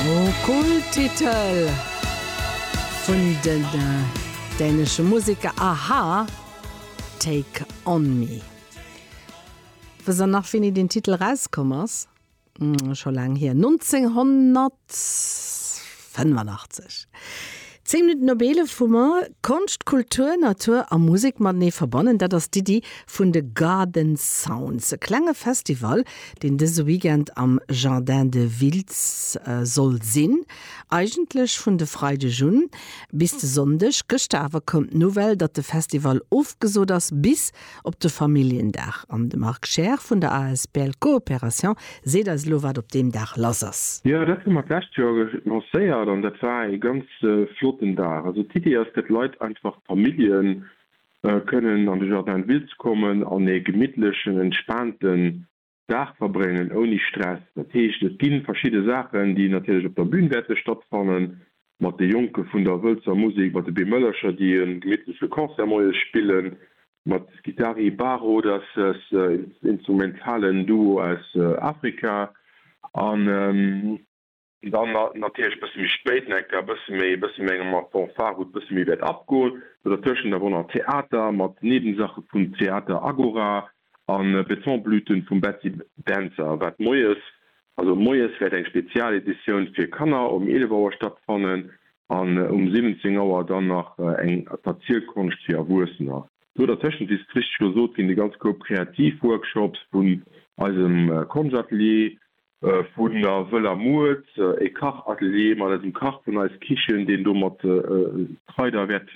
O Kulttitel vun den dänesche Museker a-ha, Take On Me. Wëss der nach wéini deen Titel erauskomm ass? Scho laang hier, 1985. Zéng Minutten op eelef hu mer. Konscht, Kultur, Natur a Musek matenee verbannen, dat ass d'Iddi vun de Garden Sounds. E klenge Festival, deen dëse Weekend am Jardin de Wiltz soll sinn. Eigentlech vun de Freideg un bis de Sonndeg. Gëschter awer koum d'Nouvelle, datt de Festival ofgesot ass, bis Op de Familljendag an de Marc Scheer vun der asbl Coopération seet eis elo wat op deem Dag lass ass. Jo dat hu mer d'lescht Joer lancéiert an dat war ee ganz flotten Dag. Also d'Idee ass fir d'Leit einfach d'Famillje kënnen an de Jardin de ville ze kommen an ee gemittlechen entspaanten. Dag verbréngen ouni Stress. Dat heescht, et gi verschidde Saachen, déi natierlech op der Bün wäerte stattfannen, mat de Jonke vun der Wëltzer Musek, mat de Bemëllercher, déi e gemittleche Concert moies spillen, mat Guitari Barrodas, instrumentalen Duo aus Afrika, an. Dann natierlech e bësse méi spéit, Necker, e bësse méi, e bësse méi enger mat Fanfare, wou et e bësse méi wäert abgoen. Do dertëschent awer och nach Theater mat Nebensache vum Theater Agora a Betonblüten vum Betty Dentzer, wat moies, also moies wäert eng Spezialeditioun fir Kanner um 11 Auer stattfannen an um 17 Auer dann nach eng Verzielkonscht fir Erwuessener. Do dertëschent, wéi et richteg gesot ginn, de ganze Koup Kreativworkshops vun eisem Konschtatelier, Vun der Wëller Muert, e Kachatelier mat eisem Kach vun Eis Kichen, deen do mat Kraider wäert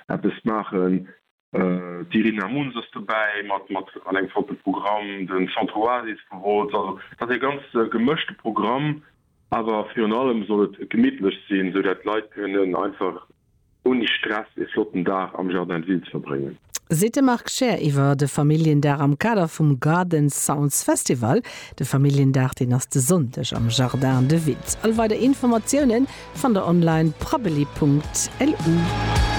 eppes maachen. D'Irina Muns ass dobäi mat mat an engem flotte Programm, den Centre Oasis vu Wolz. Also et ass e ganz gemëschte Programm, awer virun allem soll et gemittlech sinn, sou dat d'Leit kënnen einfach Ouni Stress e flotten Dag am Jardin de Ville ze verbréngen. Seet de Marc Scheer iwwer de Familljendag am Kader vum Garden Sounds Festival. De Familljendag, deen ass de Sonndeg am Jardin de Ville. All weider Informatiounen fannt der online, prabbeli.lu.